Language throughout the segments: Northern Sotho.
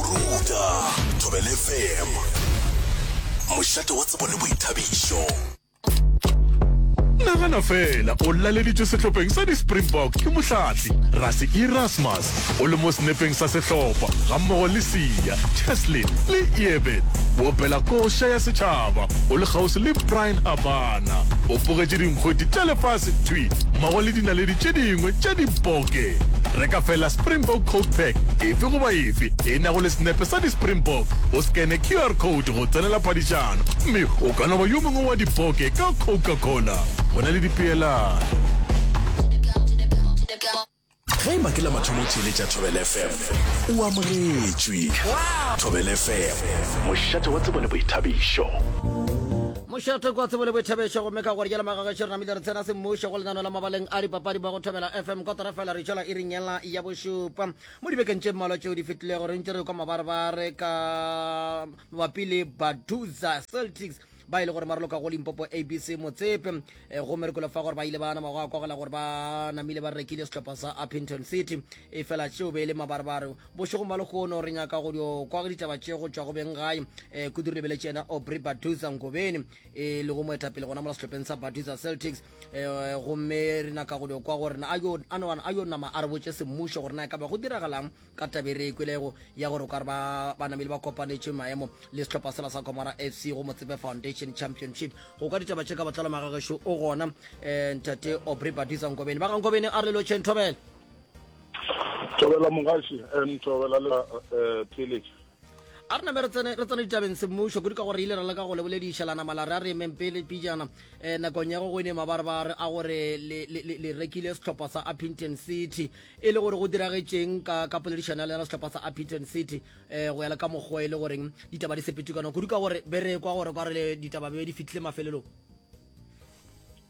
Ruta Thobela FM, mošate wa tsebo le boithabišo. Nagana fela o laleditšwe sehlopheng sa di-springbok ke mohlatli rase erasmus o le mo senepeng sa sehlopha gammogo le sia cheslin le eben boopela koša ya setšhaba o le kgauswi le brian habana o bogetše dinkgwedi tša lefase thwi mmogo le dinaledi tše dingwe tša diboke reka fela springbok coat pack efe goba Efe e nago le senepe sa di-Springbok, o scanne QR code go tsenela phadišano, mme o ka no ba yo mongwe wa dipoke ka Coca-Cola. Go na le dipeelano. Ge e ba ke la mathomo theeletša Thobel FM, o amogetšwe. Thobel FM, mošate wa tsebo le boithabišo. mošate kwa tsebo le boithabešo gomme ka gore jela magagešo re namile re tsena semmušo go lenano la mabaleng a dipapadi ba go thobela fm kotara fela re tšwela e ringela ya bošupa Mo dibekeng tše mmalwa tšeo di fetilego re ntše re kwa mabarebare ka mabapi le Baduza Celtics ba e le gore ba roloka go Limpopo ABC Motsepe e, gomme re kwele fa gore ba ile ba nama go akogela gore ba namile ba rekile sehlopha sa Upington City e fela tšeo be e le mabarebare bošegong ba lekgono re nyaka go dio kwa ditaba tše go tšwa go beng gae e, kudu re lebeletše yena Aubrey Baduza Ngobeni e lego moetapele gona mola sehlopheng sa Baduza Celtics Eh, gomme re naka go dio kwa gore a yo nama a re botse semmušo gore na e ka ba go diragalang ka tabe re ekwelego ya gore ka re banamedi ba kopanetše maemo le setlhopha sela sa comara f c go motsepe foundation championship go ka ditaba tše ka botlalo magagešo o gona um ntate obre badisa nkobene ba ga nkobene a re lelo tšheng thobela thobela mogaši um thobela le eh, pheletše a re name re tsene ditabeng semmušo kudu ka gore ile ra leka go lebolediša la nama la re a re emeng pele pijana um nakong ya go go ene mabarebare a gore le rekile sehlopha sa upington city e le gore go diragetšeng ka ka poledišano ya lena sehlopha sa upington city um go ya le ka mokgwa e le goreng ditaba di sepetukana kudu ka gore be re kwa gore kwa re ditaba be di fitlhile mafelelong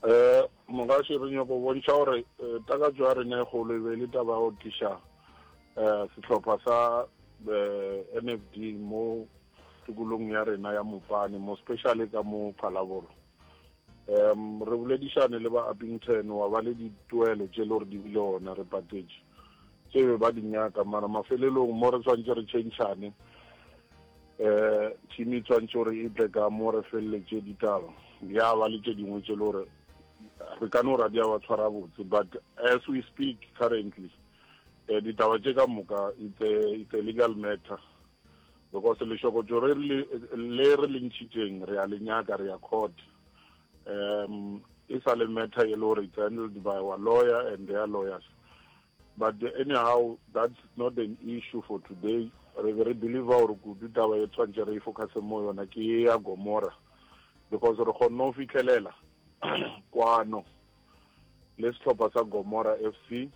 um mogase re nyako bontšha gore eh, takatso ya rena e golo e be le taba ya go tliša Uh, sehlopha sa uh, NFD mo tikolong ya rena ya Mopane mo speciale ka mo Phalabolo um re boledišane le ba Uppington wa ba le dituelo tše le gore di bile ona re patetše tse be ba di nyaka mara mafelelong mo re tshwanetse re tšhentšhane um team e tshwanetse gore e tle ka mo re feleletše ditaba ya ba le tše dingwe tše le gore re ka no ra di a ba tshwara botse but as we speak currently Eh, ditaba tše ka moka it's a, it's a legal matter because lešokotšo re le re le ntšhitšeng re a le nyaka re ya court um e sa le matter e le gore it's handled by our lawyer and their lawyers but anyhow that's not an issue for today re be re believe gore kudu taba e tshwantse re e focuse mo yona ke ya gomora because re kgonne go fitlhelela kwano le sehlopha sa Gomora FC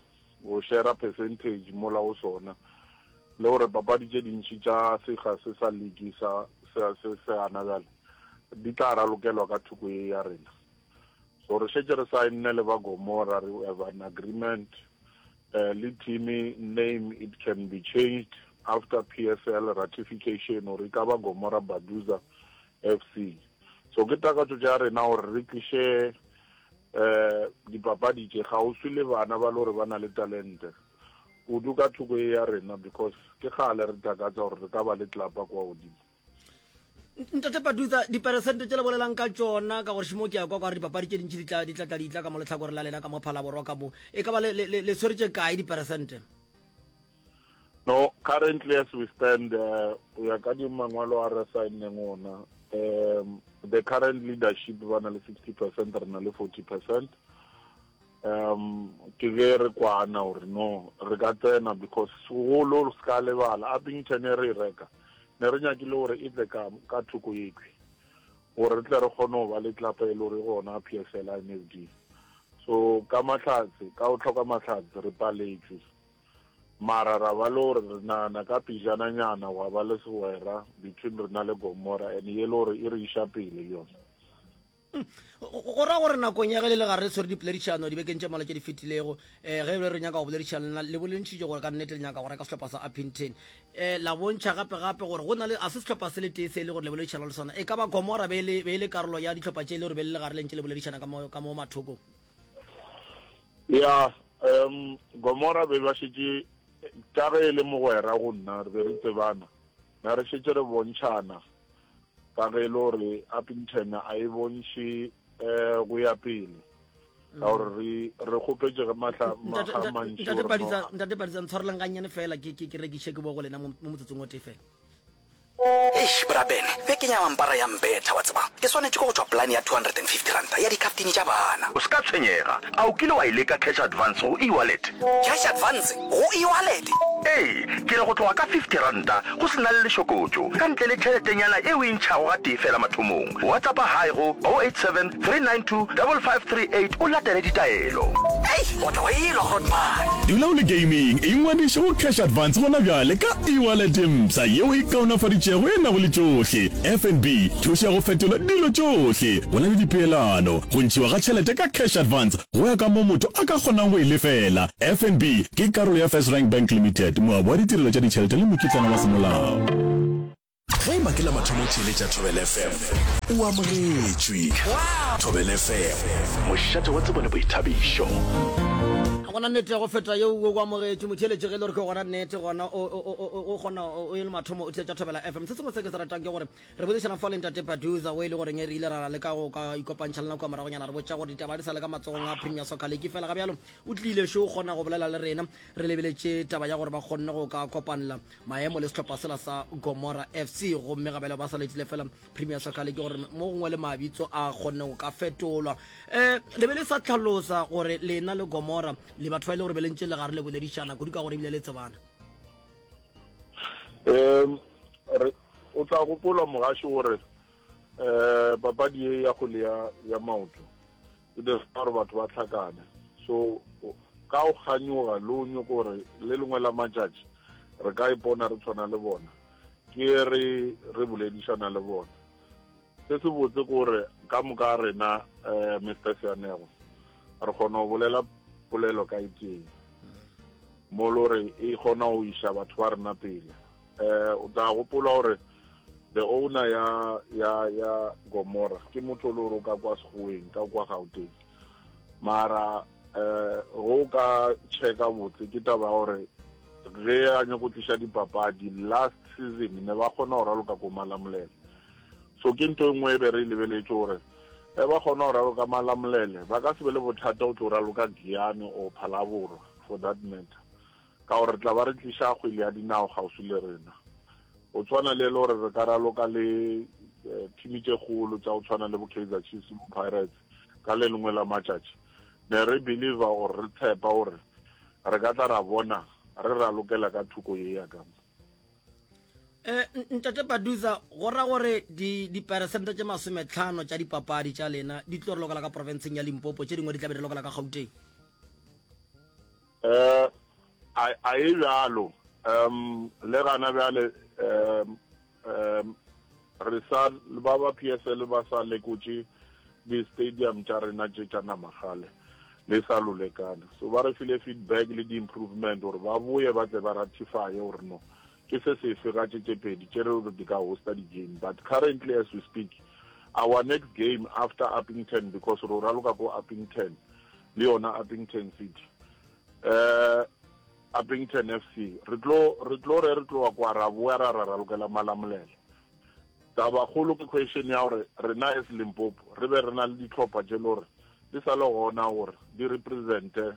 go shera percentage mola go sona le gore papadi tše dintši tša sekga se sa ligi sa se se gana bjale di tla ralokelwa ka thoko ye ya rena. So re šetše re saenne le ba Gomora, re have an agreement eh, le team name it can be changed after PSL ratification or e ka ba Gomora Baduza FC. So ke takatšo tša rena gore re tliše um dipapadi tše kgauswi le bana ba le gore ba na le talente kudu ka thoko e ya rena because ke kgale re takatsa gore re ka ba le tlapa kwa godimo ntate padutsa diperesente tse le bolelang ka tsona ka gore šimo ke ya kwa kwa re dipapadi tše dintši di tlatla di tla ka mo letlhakore la lena ka mo phalaborwa ka mo e ka ba le tshweretše kae diperesente No, currently as we stand, uh, go ya ka dimangwalo a re signeng ona, um, the current leadership ba na le 60 percent, re na le 40 percent. Um, ke ge re kwana gore no, re ka tsena because segolo se ka lebala, Abington e re e reka, ne re nyakile gore e tle ka, ka thoko ekwi, gore re tle re kgone go ba le tlapa e le gore gona PSL INFD. So, ka mahlatse, ka go tlhoka mahlatse, re paletšwe. Mara ra ba le gore re nagana ka pejana nyana gwa ba le segwera between rena le Gomora and ye le gore e re iša pele le yona. Go ra gore nakong ya ge le le gare le tshwere dipoledišano dibekeng tše mmalwa tše di fetilego, um ge ebile re nyaka go boledišana le lena, le bolentšhitše gore ka nnete le nyaka go reka sehlopha sa Upington. Um la bontšha gape-gape gore go na le, ga se sehlopha se le tee se e le gore le boledišana le sona. E ka ba Gomora be e le, be e le karolo ya dihlopha tše e le gore be le le gare le ntše le boledišana ka mo, ka mo mathokong? ya um gomora be ba šetše ka ge e le mogwera go nna re be re tsebana na re šetše re bontšhana ka ge e le gore appington a e bontšhe um go ya pele ka gore re re kgopetse ge matlha maga mantšintate badisa ntshwarelang gannyane fela ke rekiše ke bo go lena mo motsotsong o tee fela Eish, bra Ben, bjale ke nyaka mpara ya mbetha, wa tseba. Ke swanetše ke go tšwa polane ya R250 ya dikhaftini tša bana. O se ka tshwenyega. A o kile wa e leka cash advance go e-wallet? Cash advance go e-wallet? Ee, ke re go tloga ka R50, go se na le lešokotšo, ka ntle le tšheletenyana e o e ntšhago gatee feela mathomong. WhatsAppa Hi go 0872. 392 5538 o latele ditaelo. Hei, o tla wa elwa Grootman. Dula o le gaming, ingwadiše go Cash Advance gona bjale ka e-wallet mpsha yeo e kaonafaditšego e nago le tšohle, FNB, thušo ya go fetola dilo tšohle, go na le dipeelano, go ntšhiwa ga tšhelete ka Cash Advance go ya ka moo motho a ka kgonang go e lefela. FNB ke karolo ya First Rank Bank Limited, moabi wa ditirelo tša ditšhelete le mokitlana wa semolao. Ge e ba ke la mathomo o theeletša Thobela FM, o amogetšwe. Thobela FM, mošate wa tsebo le boithabišo. Ga go na nnete ya go feta yeo, wo o amogetšwe. Motheeletši, ge e le gore ke gona nnete, gona o, o, o, o, o kgona, o, o e le mathomo o theetša Thobela FM. Se sengwe se ke se ratang ke gore re boledišana fa le Ntate Paduza, wo e le goreng re ile ra leka go ka ikopantšha le nako ya moragonyana, re botša gore ditaba ga di sa le ka matsogong a Premier Soccer League. Efela ga bjalo o tlile šo o kgona go bolela le rena, re lebeletše taba ya gore ba kgonne go ka kopanela maemo le sehlopha sela sa gomora fc gomme gabele ba sa letile fela premier soccer league gore mo gongwe le mabitso a kgonne go ka fetolwa um le be le sa tlhalosa gore lena le gomora le batho ba e le gore be le ntse le gare le boledišana kudu ka gore ebile le tsebana um o tla gopola mogaši gore um papadi e ya kgole ya maoto e be fa gore batho ba hlakane so ka o kganyoga le o nyoko gore le lengwe la matšatši re ka ipona re tshwana le bona ke re re boledišana le bona se se botse ke gore ka moka rena um mr seanego re kgona go bolela polelo ka iteng mo lo re e kgona go iša batho ba rena pele Eh, o tla gopola gore the owner ya ya ya gomora ke motho le gore o ka kwa segoweng ka kwa gauteng mara eh go ka checka botse ke taba ya gore ge a nyako tlisa dipapadi last season ne ba kgona go raloka ko malamolele so ke ntho e nngwe e be re e lebeletse gore e ba kgona go raloka malamolele ba ka se be le bothata o tlo raloka giane or phalaborwa for that matter ka gore re tla ba re tliša kgwele ya dinao kgauswi le rena. Go tshwana le e le gore re ka raloka le thimi tše kgolo tša go tshwana le bo Kaizer Chiefs le bo Pirates ka le lengwe la matšatši, ne re believer or re tshepa gore re ka tla ra bona re ralokela ka thoko ye ya ka mo. Um ntate Paduza, go ra gore diperesente tše masometlhano tša dipapadi tša lena di tlo re lokela ka profenseng ya Limpopo, tše dingwe di tla be di lokela ka Gauteng? Um, a, a e bjalo. Um, le gana bjale, um, um, re sa, ba ba PSL ba sa lekotše di-stadium tša rena tše tša nama gale, le sa lolekana. So ba re file feedback le di-improvement gore ba boye ba tle ba ratify gore no, Ke se sefe ga tše tše pedi tše re re di ka hosta di game but currently as we speak our next game after Upington because ro raloka ko Upington le yona Upington City um Upington FC re tlo re tlo re re tloga kwa ra boya ra ra ralokela Malamulele taba kgolo ke question ya gore rena as Limpopo re be re na le ditlhopha tše lore di sa le gona gore di represente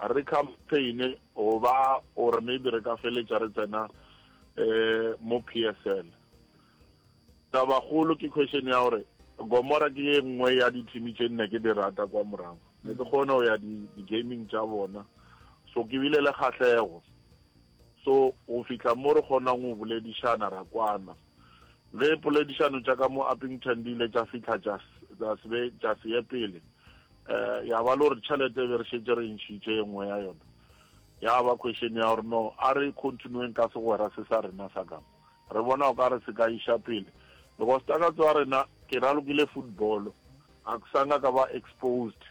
A re khampheine go ba gore maybe re ka feletša re tsena um mo PSL. Tabakgolo ke question ya gore Gomora ke e nngwe ya dithimi tše nne ke di rata kwa morago. Ne ke kgone go ya di-gaming tša bona. So ke bile le kgahlego. So go fihla mo re kgonang go boledišana ra kwana. Ge poledišano tša ka mo Upington di ile tša fihla tša se ye pele, um ya ba le gore tšhelete be re šetse re ntšhitše e nngwe ya yona ya ba question ya gore no a re continueng ka segwera se sa rena sa kamo re bona o ka re se ka iša pele because takatso ya rena ke ralokile football a ke sanga ka ba exposed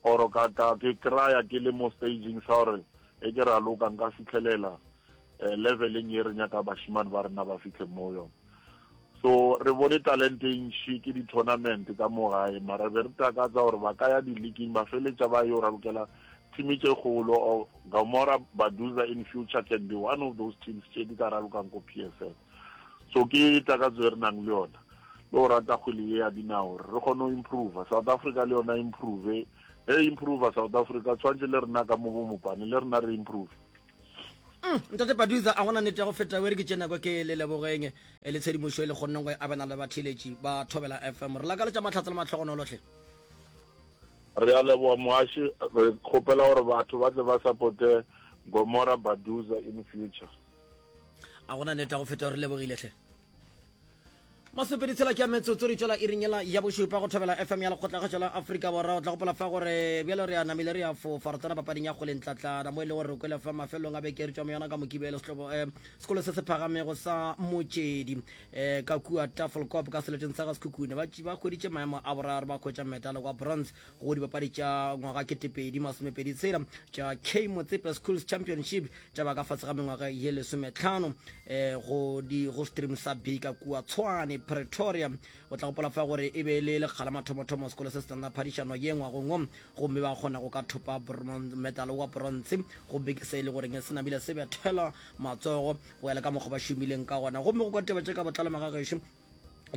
or ka ka ke kraya ke le mo staging sa gore e ke raloka nka fitlhelela eh, leveleng ye re nyaka bashimane ba rena ba fihle mo yone so re bone talente e ntšhi ke di-tournament ka mo gae mara be re takatsa gore ba ka ya di-leaking ba feletša ba yo ralokela team tše kgolo or gamora baduza in future can be one of those teams tše di ka ralokang ko p s l so ke takatso e re nang le yona le go rata kgwele ye ya dinao re kgone go improva south africa le yona improve e improva south africa tshwanetse le rena ka mo bomopane le rena re improve mm, ntate paduza a gona nete ya go feta were ke tšena kwa ke le lebogeng e eh, le tshedimošo e le kgonneng go e abena le batheletši ba thobela fm re lakaletša matlhatsa le matlhogonolotlhe re a leboga moaši re kgopela gore batho ba tle ba supporte gomora baduza in future a gona nete ya go feta gore lebogiletlhe masepedi tshela ke ya metsotso di tšwela irinyela ya bošupa go thobela fm ya lekgotlakgetšo la afrika borwa o tla gopola fa gore bjalo re a namile re a fofa re tsena papading ya kgoleng tlatlana mo e le gore re kwele fa mafelong a beke re tšwa mo yona ka mokibelo eh, sekolo se se phagamego sa motšedi eh, ka kua tafelcop ka seleteng sa ga sekhukhune ba hweditše maemo a boraro ba khwetša metalo kwa bronze go dipapadi tša ngwaga ketepedi masomepedi tshela tša k motsepe schools championship tša ba ka fase ga mengwaga ye lesometlhano um eh, go di go stream sa bika kua tshwane pretoria o tla gopola fa gore e be e le lekgala mathomothomo sekolo se se tsena phadišano ye ngwagongwe gomme ba kgona go ka thopa medal wa bronze gomme ke se e le goreng se namile se bethela matsogo go ya le ka mokgwa ba šomileng ka gona gomme go ka teba tše ka botlalo magagešo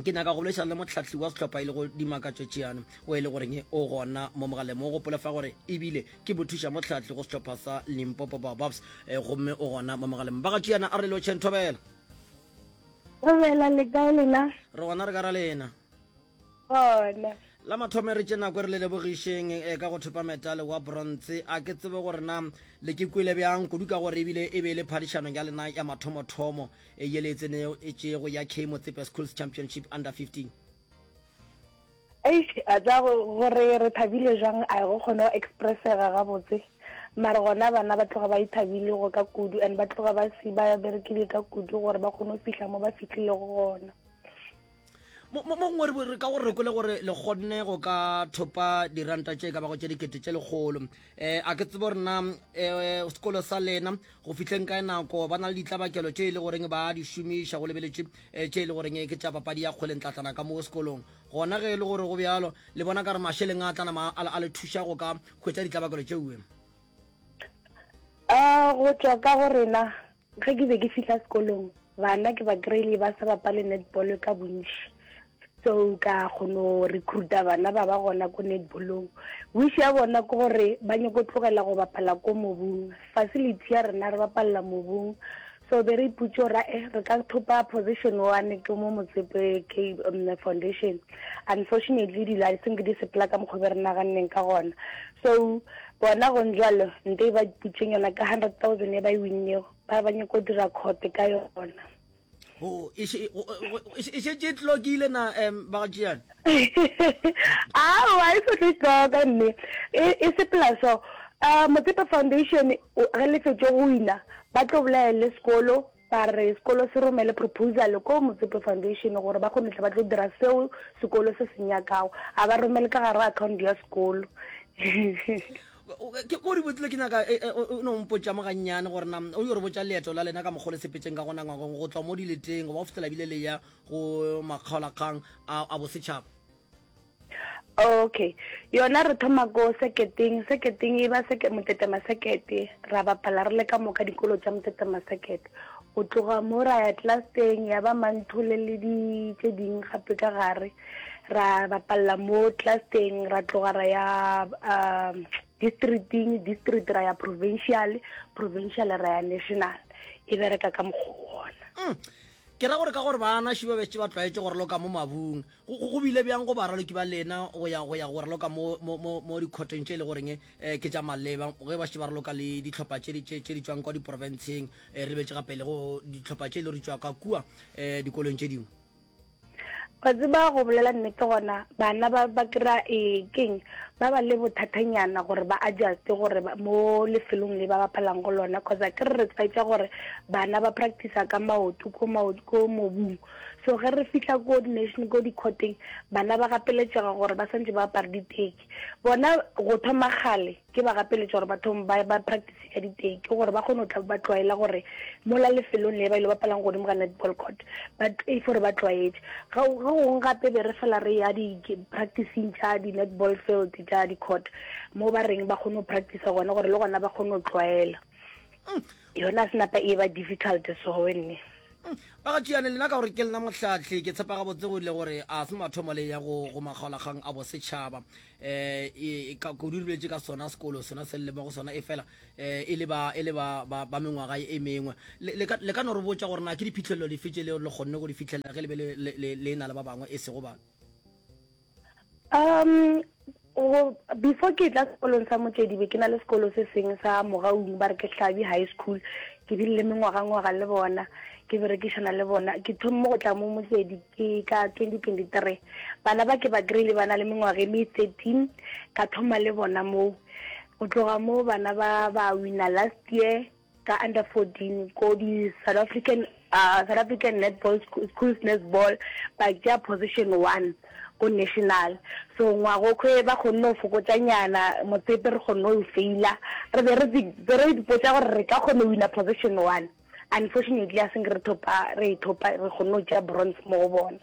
ke nyaka go boledišana le motlhahli wa sehlopha e le go dimakatšo tšeano o e le goreng o gona mo mogaleng mo gopole fa gore ebile ke bothuša motlhahli go sehlopha sa limpopo baobabs eh, gomme o gona mo mogaleng ba ga tšeana a re leo chen thobela thobela le kae lena re gona re ka ra lena gona la mathome re tše nako re le lebogišeng e eh, ka go thopa metale wa bronze a ke tsebe gore na le ke kwele bjang kudu ka gore ebile e be e le phadišanong ya lena ya mathomothomo e yele e tsenego e tšego ya K Motsepe Schools Championship Under 15. Eish a tsa gore re thabile jang a go kgone go expressega gabotse mara gona bana ba tloga ba ithabile go ka kudu and ba tloga ba si ba berekile ka kudu gore ba kgone go fihla mo ba fitlhilego gona mo gongwe re ka gore re kwele gore le kgonne go ka thopa diranta tše ka bago tše dikete tše lekgolo um a ke tsebo rena um eh, sekolo sa lena go fihleng kae nako ba na le ditlabakelo tše e le goreng ba di šomiša go lebeletše um eh, tše e le goreng ke tša papadi ya kgweleng tlatlana ka mo sekolong gona ge e le gore go bjalo le bona ka re mašeleng a tlanama a le thuša go ka hwetša ditlabakelo tšeue a go tšwa ka go rena Ge ke be ke fihla sekolong, bana ke ba kry-ile ba sa bapale netball ka bontši. So ka kgono recruita bana ba ba gona ko netballong. Wish ya bona ke gore ba nyako tlogela go bapala ko mobung. Facility ya rena re bapalela mobung. So be re ipotše gore a e re ka thopa position one ke mo Motsepe ke foundation. Unfortunately di-licence di sepela ka mokgwa o be re naganneng ka gona. So Bona gontjalo nto e ba diputšeng yona ka hundred thousand e ba e winnego, ba ba nyako dira court ka yona. Ho, e še- go- go- go- e še- e šetše e tlokile na um ba go tšeana aowa e se tlo itloka mme e e sepela so um motsepe foundation o- ge lefetše go wina ba tlo bolaele sekolo Ba re sekolo se romele proposal ko Motsepe Foundation gore ba kgone tle ba tlo dira seo sekolo se se nyakago. A ba romele ka gare ga account ya sekolo. Ke mo re botlile ke nyaka e, e, o no mpotša mo gannyane gore na o yo re botša leeto la lena ka mokgwa le sepetseng ka gona ngwagong go tswa mo dileteng go ba go fitlhela bile le ya go makgaolakgang a bosetšhaba. okay yona re thoma ko seketeng seketeng e ba seke motete masekete ra bapala re le ka moka dikolo tša motete masekete o tloga mo ra ya tlaseng ya ba manthole le di tse ding gape ka gare ra bapalla mo tlaseng ra tloga ra ya um districting district ra ya provincial provincial ra ya national e bereka ka mokgwa ona mm. ke ra gore ka gore bana šiba bešitše ba tlwaetše gore loka mo mabung Go, go, go bile bjang go baraloki ba lena go ya go ya go raloka mo, mo, mo, mo dikhoteng tše e le goreng eh, ke tša maleba ge ba šetše ba raloka le dihlopha tše di- tše tše di tšwang kwa diporofenseng eh, re betse gapele go dihlopha tše e le gore di tšwa ka kua eh, dikolong tše dingwe wa tseba go bolela nnete gona bana ba ba kry-a ee keng ba ba le bothathanyana gore ba adjuste gore ba- mo lefelong le ba bapalang go lona cause a ke re re tshwaetsa gore bana ba practice ka maoto ko mao- ko mobung So ge re fihla ko dination ko dikhoteng bana ba gapeletšega gore ba santse ba apare diteki. Bona go thoma kgale ke ba gapeletša gore ba thome ba ba practice ka diteki gore ba kgone go tla ba tlwaela gore mola lefelong le ba ile ba palang godimo ga netball court ba e for ba tlwaetše. Ga go gong gape be re fela re ya di practicing tša di netball field tša di court mo ba reng ba kgone go practice gone gore le gona ba kgone go tlwaela. Mm. Yona se napa e ba difficult so we nne. Umm ba ga tšeane lena ka gore ke lena mohlahli ke tshepa gabotse go ile gore a se mathomo le ya go go makgaolakgang a bosetšhaba eh e ka kudu rilwetse ka sona sekolo sona se le mo go sona e fela eh e le ba e le ba ba mengwaga e mengwe le ka le ka no re botša gore na ke diphihlelelo dife tše le le kgonne go di fihlelela ge le be le le le na le ba bangwe e sego ba um before ke tla sekolong sa motsedi be ke na le sekolo se seng sa mogaung ba re ke hlabi high school ke bile le mengwagangwaga le bona ke berekišana le bona ke thommo go tla mo motsedi ke ka twenty twenty three bana ba ke ba kry-ile ba na le mengwaga e me thirteen ka thoma le bona moo go tloga moo bana ba ba wina last year ka under 14 ko di South African uh, South African netball school, schools netball ba tšea position one ko national so ngwago kwe ba kgonne go fokotsa nyana motsepe re kgonne go faila re be re be re dipotsa gore re ka kgone wina position one unfortunately a seng re thopa re e thopa re kgonne go tšea bronze mo go bona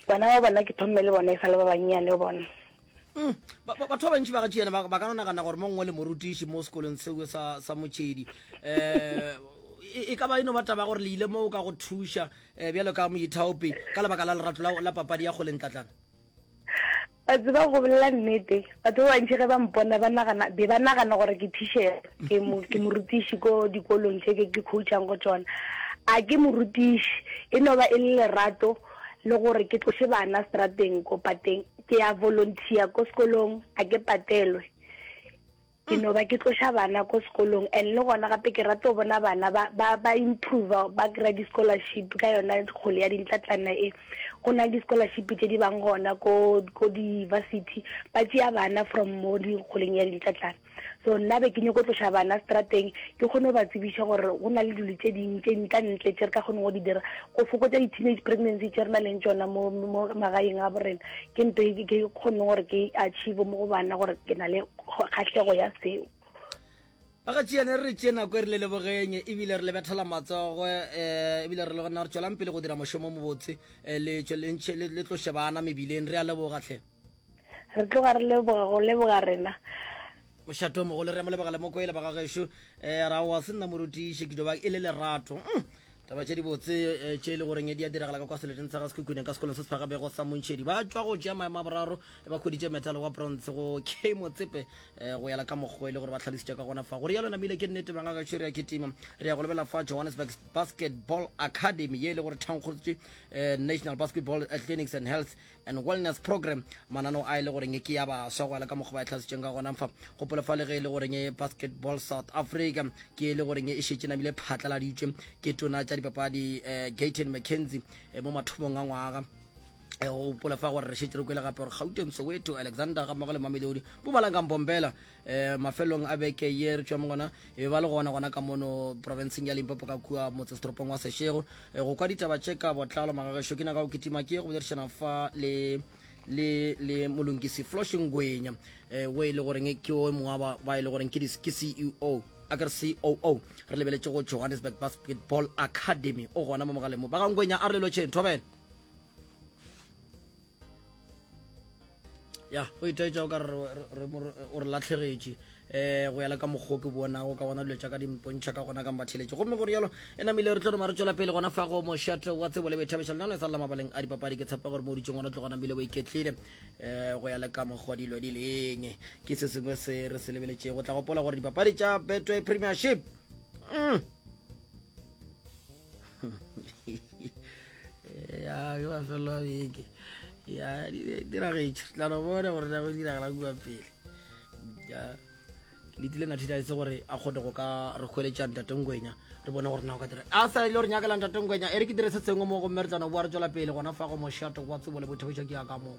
bana ba bona ke thomme le bona e sa le ba bannyane bona Mm. Batho ba bantši ba gatši yena ba ka nagana gore mo ngwe le morutiši mo sekolong seo sa motšhedi um e ka ba e no ba taba gore le ile moo ka go thuša um bjalo ka moithaopi ka lebaka la lerato la papadi ya kgolentlatlana ba tseba go bolela nnete batho ba bantši ge ba mpona be ba nagana gore ke tishera ke morutiši ko dikolong tse ke coachang go tsona a ke morutiši e no ba e le lerato le gore ke tlose bana strateng ko pateng ke a volunteer ko sekolong a ke patelwe ke no ba ke tloša bana ko sekolong and le gona gape ke rata go bona bana ba ba ba improve ba kry di-scholarship ka yona kgole ya dintlatlana e go na le di-scholarship tse di bang gona ko ko di-university ba tšea bana from mo dikgoleng ya dintlatlana So nna be ke nyoko tloša bana strateng ke kgone go ba tsebiša gore go na le dilo tše ding tše nka ntle tše re ka kgone go di dira go fokotsa di-teenage pregnancy tše re na leng tšona mo magaeng a borena ke nto e ke kgone gore ke achieve mo go bana gore ke na le kgahlego ya seo ba ga tšeane re re tšee nako e re le lebogeng ebile re le bethela matsogo um eh, ebile re le gona re tswelang pele go dira mošomo mobotse eh, le tloše bana mebileng re a lebogatlhe Re tloga re leboga go leboga rena. Mošatomogolo, re a mo lebogela mo kwele bagagešo eh, ra wa se nna morutiši ke joba e le lerato mm. taba tše dibotse eh, tše e le goreng di a diragala ka kwa seleteng sa ga sekhukhuneng ka sekolong se se fagabego sa montšhedi ba tšwa go tšea maemo a boraro ba kgweditše metalo wa bronze go k motsepe eh, go yela ka mokgwa e le gore ba tlhalositše ka gona fa go rialo namile ke nnete bangagešo re a kitima re ya go lebelela fa johannesburg basketball academy ye e le gore thankgolotše eh, national basketball athletics and health and Wellness Program, mananeo a e le goreng ke ya baswa gwala ka mokgwa ba e tlhasitšeng ka gona fa gopola fa le ge e le goreng Basketball South Africa ke e le goreng e šetše namile phatlaladitšwe ke tona tša dipapadi eh, Gayton McKenzie eh, mo mathomong a ngwaga Eh, go gopola fa gore re šetse re kwele gape gore gauteng soweto alexander ga mmogo le mamelodi bo balang ka mpompela um mafelong a beke ye re tšwa mo gona e be ba le gona gona ka mono provinceng ya limpopo ka kua motsesetoropong wa sešego eh, go kwa ditaba tše ka botlalo magagešo ke naga o kitima ke go boledišana fa le le le molongisi floshing gwenya um eh, o e le goreng ke o mongwa ba e le goreng ke ceo a kere coo re lebeletse go johannesburg basketball academy o gona mo mogaleng mo ba gangwenya a re lelotšheng thobela ya o itaetša o ka o re latlhegetše um go ya le ka mokgwa ke bonago ka gona dilo tša ka di mpontšha ka gona ka mbatheletše gomme gore yalo e namile re tlo rema re tšwela pele gona fa go mošato wa tsebo le boithabiša lenano e sa lela mabaleng a dipapadi ke tshepa gore mo ditseng gona tlo gona bile bo iketlile um go ya le ka mokgwa dilo di leng ke se sengwe se re se lebeletšeng go tla gopola gore dipapadi tša betway premiership mm. ya ke mafelo a beke ya diragetše tla no bona gore na go diragala kua pele ya le tlile na thita itse gore a kgone go ka re kgweletša ntatengwenya re bone gore na o ka dira a sa ile gore nyakela ntatengwenya e re ke dire se sengwe mo gomme re tla no boa re tswela pele gona fa go moshato wa tsebo le bothebeša ke ya ka moo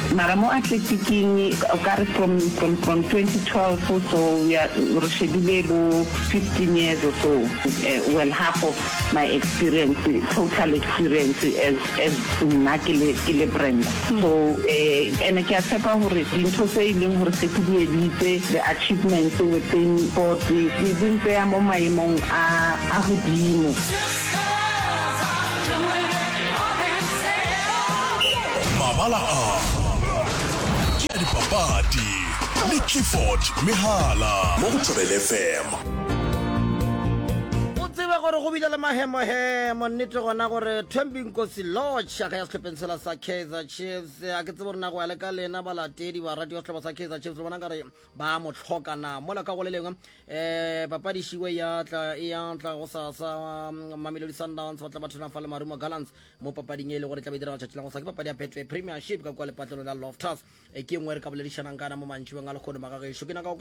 Mara mo athletiking o ka re from from from 2012 so we are re shebile bo 15 years or so uh, well half of my experience total experience as as nna ke le ke le brand so eh ene ke a tshepa gore dintho tse e leng gore se ke di editse the achievements within board di di ntseya mo maemong a a godimo Mabala a ke a dipapadi le Clifford Mehala mo go Thobela FM. O tsebe gore go bile le mahemohemo nnete gona gore Thembi Nkosi Lorch a ka ya sehlopheng sela sa Kaizer Chiefs. A ke tsebe gore na go ya le ka lena balatedi ba radio sehlopa sa Kaizer Chiefs le bona ka re ba mo tlhoka na mola ka go le lengwe um papadišiwe ya tla e ya tla go sa sa mm, mamelodi sundowns ba tla ba thona fa le marumo gallants mo papading e le gore tla be direga tšatši la go sa ke papadi ya betway premiership ka kwa lepatlelo la loftus e ke nngwe re ka boledišanang kana mo mantšibeng a lekgono magagešo ke naka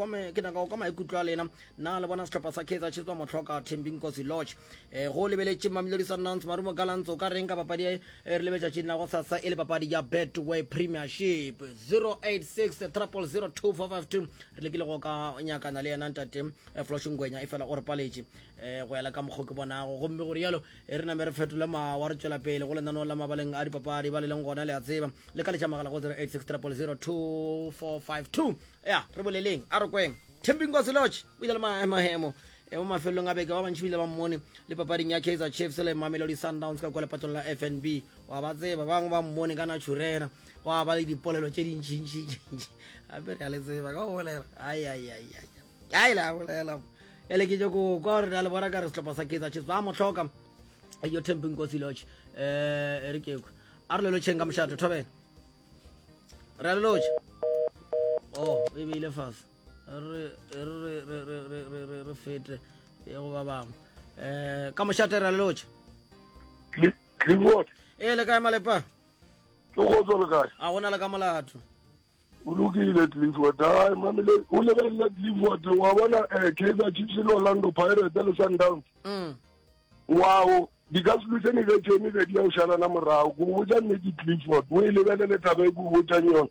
go kwa maikutlo a lena Na le bona sehlopha sa Kaizer Chiefs ba mo hloka Thembinkosi Lorch? Eh, go lebeletše Mamelodi Sundowns, Marumo Gallants, o ka reng ka papadi e re le betšatšing la go sasa e le papadi ya Betway Premiership? 086 000 2452 re lekile go ka nyakana le yena ntate eh, Flosh Ngwenya e fela o re paletše eh, go yala ka mokgo ke bonago gomme go rialo e re name re fetole mawa re tšwela pele go lenaneo la mabaleng a dipapadi ba le leng gona le a tseba le ka letša magala go 086 000 2452 Ya, re boleleng, a re kweng. Thembinkosi Lorch o ile le mahemohemo e mo mafelelong a beke ba bantši bile ba mmone le papading ya kaizer chiefs le mamelodi sundowns ka kwa lepatong la fnb wa ba tseba bangwe ba mmone ka naturena gwa ba le dipolelo tše dintšintšintšintši gape re a le tseba ka go bolela ai le a bolela ele ke tšo ko kwa gore re a le bona ka re setlhopha sa kaizer chiefs ba mo tlhoka yo tempi nkosi lodge um e re keko a re lelotšheng ka mošato thobela ra lotša oh e beile fase re fete ya go ba bangwe um ka mošate ra lotša ee le kae malepa ke kgotso le kae a gona le ka molato o lokile clifford ai mamele o lebelela clifford wa bona um kaizer chiefs le orlando pirate le sundowns mm. Oago, di ka se luse ni ge tšone ge di ya o šalana morago. Ke go botša nnete Clifford, o e lebelele taba e ke go botšang yona.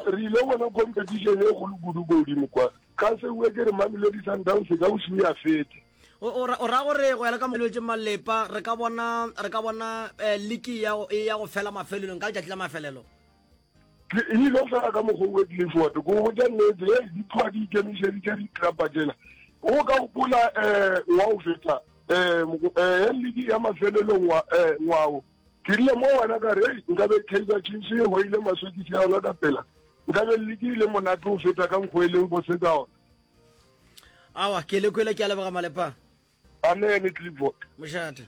Re ile bona competition e kgolo kudu ko godimo kwa. Ka se bue ke re Mamelodi Sundowns e ka o šuya fete. O ra gore go ya le ka molwetše malepa re ka bona re ka bona eh, liki ya go fela mafelelong ka letšatši la mafelelo. ke e ile fela ka mokgwa o tlile fote ko go ja nnete e di tlwa di ikemišeditše di trapa tsela o ka gopola um eh, wa o fetsa um eh, eh, e ledi ya mafelelong ngwao ke rile mo wena ka re nkabe kaizer chiefs e goile maswekisi ya yona ka pela nkabe ledi e le monate o feta ka nkgo e leng bose ka ona awa ke le kwele ke a leboga malepa amen clipboard mošate